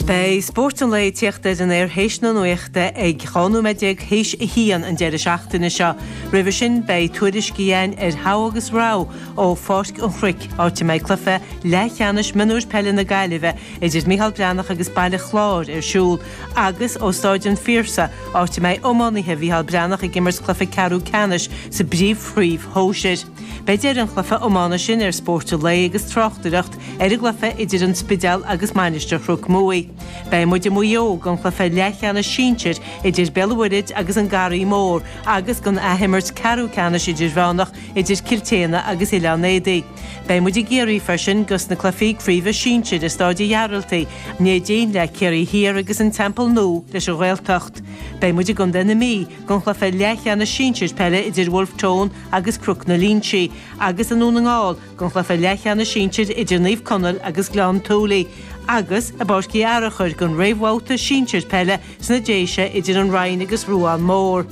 Beidh spórt an lae ag tíocht ar an aer théis na nuachta ag 12 nóiméad théis a haon an deireadh seachtaine seo. Roimhe sin beidh tuairiscí againn ar Thogha agus Rogha ó Pháirc an Chnoic, áit a mbeidh cluiche leathcheannais mionúir peile na Gaillimhe idir Micheál Breathnach agus Baile Chláir ar siúl, agus ó Stáid an Phiarsaigh, áit a mbeidh iománaithe Mhicheál Breathnach ag imirt cluiche ceathrú ceannais sa bpríomhchraobh shóisir. Beidh deireadh an chluiche iomána sin ar Spórt an Lae agus tráchtaireacht Ar an gcluife idir an Spidéal agus Mainistir Chnoc Muaí. Beidh muid i Maigh Eo don chluife leathcheannais sinsir idir Béal an Mhuirthid agus An Garraí Mór agus don athimirt ceathrú ceannais idirmheánach idir Cill tSéadhna agus Oileán Éadaí. Beidh muid i gCiarraí freisin dos na cluifí craoibhe sinsir i Stáid an Ghearaltaigh, Neidín le Ciarraí Thiar agus An Teampall Nua leis An Ghaeltacht. Beidh muid i gContae na Mí don chluife leathcheannais sinsir peile idir Bhulf Tón agus Cnoc an Línsigh agus i nDún na nGall don chluife leathcheannais sinsir idir Naomh Conaill agus Gleann tSúilí agus i bPáirc Uí Fhearachair don réamhbhabhta sinsir peile sna Déise idir An Rinn agus Ruán Mór.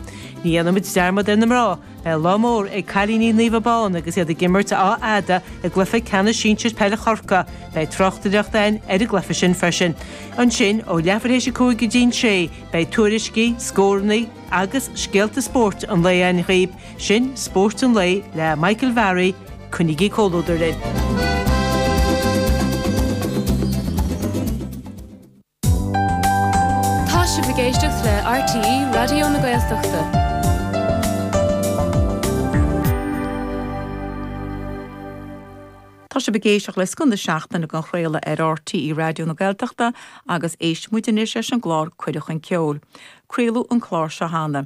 Ní dhéanfaidh muid dearmad ar na mná. Beidh lá mór ag cailíní Naomh Abán agus iad ag imirt Áth Fhada i gcluiche ceannais sinsir peile Chorcaí. Beidh tráchtaireacht againn ar an gcluiche sin freisin. Ansin ó leathuair théis a cúig go dtí'n sé beidh tuairiscí, scórannaí agus scéalta spóirt an lae againn. Sin Spórt an Lae le Michael Varry, coinnigí comhluadar linn! Tá sibh ag éisteacht le scoth na seachtaine dhá chraoladh ar RTÉ Raidió na Gaeltachta agus éistfidh muid anois leis an gclár Cuireadh Chun Ceoil. Craoladh an clár seo cheana.